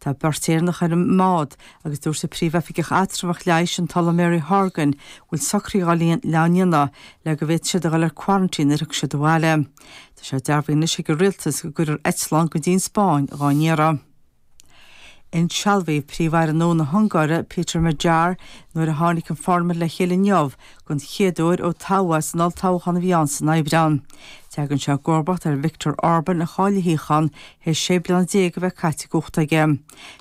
Tá beirt Éireannach ar an mbád agus dúirt an Príomh-Oifigeach Eatramhach Leighis, an tOllamh Mary Horgan, go bhfuil socruithe dhá ndéanamh le go bhféadfaidh siad a dhul ar quarantine nuair thiocfaidh siad abhaile. Tá sé dearbhaithe anois ag an Rialtas go gcuirfear eitleán go dtí'n Spáinn dhá n-iarraidh. Insealbhaíodh Príomh-Aire nua na hUngáire, Péter Magyar, nuair a tháinig an Pharlaimint le chéile inniu den chéad uair ó toghadh é san olltoghchán a bhí ann san Aibreán. Teagann sé i gcomharbacht ar Viktor Orban a chaill a shuíochán théis sé bliana déag a bheith caite i gcumhacht aige.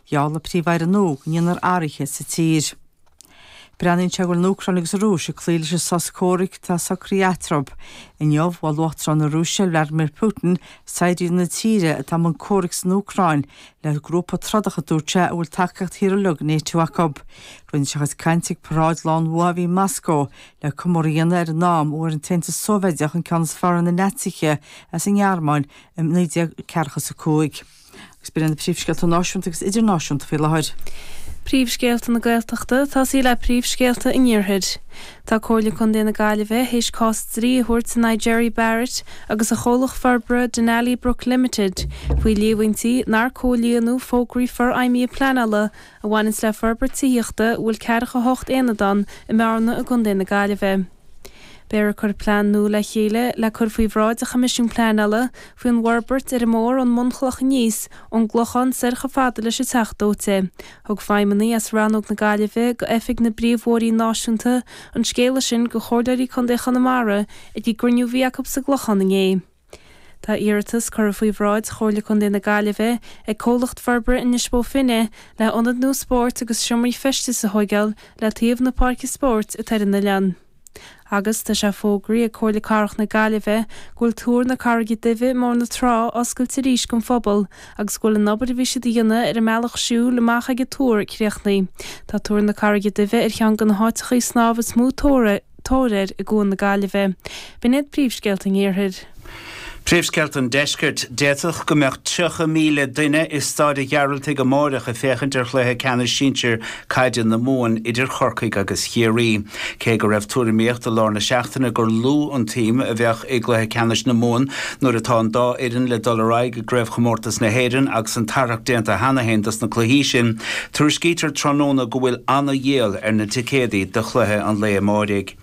Gheall an Príomh-Aire nua go ndéanfar athruithe sa tír. Breathnaíonn sé go bhfuil an Úcráin agus an Rúis ag cloí leis an sos comhraic atá socraithe eatarthu. Inniu, mhol Uachtarán na Rúise, Vladimir Putin, saighdiúirí na tíre atá i mbun comhraic san Úcráin le grúpa trodach a dúirt sé a bhfuil tacaíocht thíortha uilig NATO acu. Rinne sé a chuid cainte ag paráid Lá an Bhua a bhí i Moscó le comóradh a dhéanamh ar an am a bhfuair an tAontas Sóivéideach an ceann is fearr ar na Naitsithe as an nGearmáin i naoi déag ceathracha 's a cúig. Agus b'in iad na príomhscéalta náisiúnta agus idirnáisiúnta faoi láthair. Príomhscéalta na Gaeltachta, tosóidh muid le príomhscéalta an iarthair. Tá Comhairle Contae na Gaillimhe théis cás dlí a thabhairt in aghaidh Gerry Barrett agus a chomhlacht forbartha Denali Brook Limited faoi líomhaintí nár comhlíonadh fógraí forfheidhmithe pleanála a bhaineanns le forbairt tithíochta a bhfuil ceathracha hocht aonad ann i mBearna i gContae na Gaillimhe. Beifear ag cur plean nua le chéile le cur faoi bhráid a' Choimisiún Pleanála faoi an bhforbairt ar an mbóthar ón mbunchloch aníos, ón gClochán soir cho fada leis an Teach Dóite. Thug feidhmeannaigh as Rannóg na Gaillimhe de Oifig na bPríomhbhóithrí Náisiúnta an scéala sin do Chomhairleoirí Contae Chonamara ag a gcruinniú bhí acu sa gClochán inné. Tá iarratas curtha faoi bhráid Chomhairle Contae na Gaillimhe ag Comhlacht Forbartha Inis Bó Finne le ionad nua spóirt agus seomraí feistis a thóigeáil le taobh na páirce spóirt atá ar an oileán. Agus tá sé fógraí ag Comhairle Cathrach na Gaillimhe go bhfuil Túr na Carraige Duibhe i mBóthar na Trá oscailte arís don phobal agus go bhfuil an obair a bhí siad a dhéanamh ar an mbealach siúil amach ag an túr críochnaithe. Tá Túr na Carraige Duibhe ar cheann de na háiteachaí snámh is mó tóir tóir air i gCuan na Gaillimhe. B'in iad príomhscéalta an Iarthair. Príomhscéalta an Deiscirt. D'fhéadfadh go mbeadh 30,000 duine i Stáid a' Ghearaltaigh amáireach ag féachaint ar Chluiche Ceannais Sinsir Caide na Mumhan idir Chorcaigh agus Chiarraí. Cé go raibh tuairimíocht i lár na seachtaine gur lú an tsuim a bheadh i gCluiche Ceannais na Mumhan nuair atá an dá fhoireann le dul ar aghaidh i gCraobhchomórtas na hÉireann agus an tarrac déanta cheana féin dos na cluichí sin, Tuairiscítear tráthnóna go bhfuil ana-dhíol ar na ticéadaí do chluiche an lae amáirigh.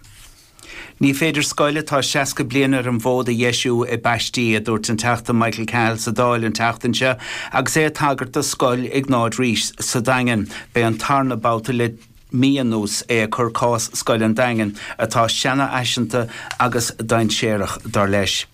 Ní féidir scoil atá 60 bliain ar an bhfód a dheisiú i bpaistí, a dúirt an Teachta Michael Cahill sa Dáil an tseachtain seo agus é ag tagairt do Scoil Iognáid Rís sa Daingean. B'é an tarna babhta le mí anuas é ag cur cás scoil an Daingin, atá seanfhaiseanta agus dainséarach, dar leis.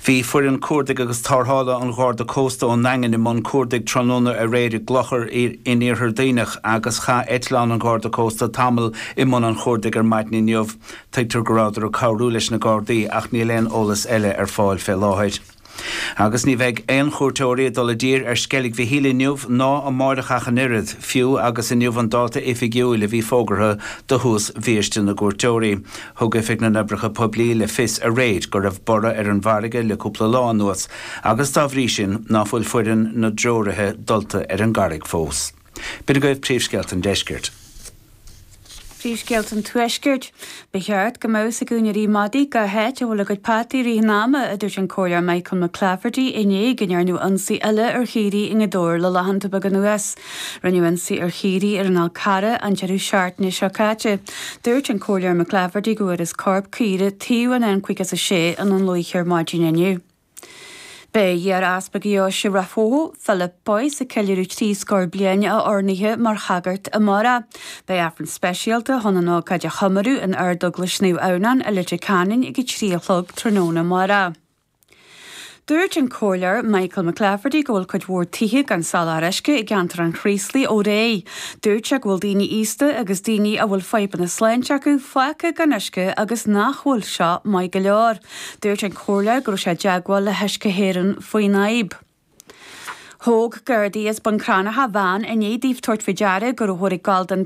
Bhí foireann cuardaigh agus tárthála an Gharda Cósta ón nDaingean i mbun cuardaigh tráthnóna aréir i gClochar in Iarthar Duibhneach agus chaith eitleán an Gharda Cósta tamall i mbun an chuardaigh ar maidin inniu. Tuigtear go rabhadar ag cabhrú leis na Gardaí ach níl aon eolas eile ar fáil fé láthair. Agus ní bheidh aon chuairteoirí ag dul i dtír ar Sceilg Mhichíl inniu ná amáireach ach an oiread, fiú agus inniu an dáta oifigiúil a bhí fógartha do thús bhiaiste na gcuairteoirí. Thug Oifig na nOibreacha Poiblí le fios aréir go raibh borradh ar an bhfarraige le cúpla lá anuas agus, dá bhrí sin, ná fuil foireann na dtreoraithe dulta ar an gcarraig fós. B'in agaibh príomhscéalta an deiscirt. Príomhscéalta an tuaiscirt. Ba cheart go mbeadh a fhios ag úinéirí madaí cá háit a bhfuil a gcuid peataí i rith an ama, a dúirt an Comhairleoir Michael McClafferty i ndiaidh go ndearnadh ionsaí eile ar chaoirigh i nGaoth Dobhair le laethanta beaga anuas. Rinneadh ionsaí ar chaoirigh ar an Fhal Carrach, an deireadh seachtaine seo caite. Dúirt an Comhairleoir McClafferty go bhfuarthas corp caora taobh an N56 i nDún Lúiche ar maidin inniu. Beidh iar-Easpag Dheoise Rath Bhotha Philip Boyce ag ceiliúradh trí scór bliain a oirnithe mar shagart amárach. Beidh Aifreann speisialta chun an ócáid a chomóradh in Ardeaglais Naomh Adhamhnáin i Leitir Ceanainn ag 3 a chlog tráthnóna amárach. Dúirt an Comhairleoir Michael McClafferty go bhfuil cuid mhór tithe gan soláthar uisce i gceantar an Chraoslaigh ó aréir. Dúirt sé go bhfuil daoine aosta agus daoine a bhfuil fadhbanna sláinte acu fágtha gan uisce agus nach bhfuil seo maith go leor. Dúirt an Comhairleoir go raibh sé i dteagmháil le hUisce hÉireann faoin fhadhb. Thóg Gardaí as Bun Cranncha veain i ndiaidh daofa tabhairt faoi deara go rabhthar ag gabháil don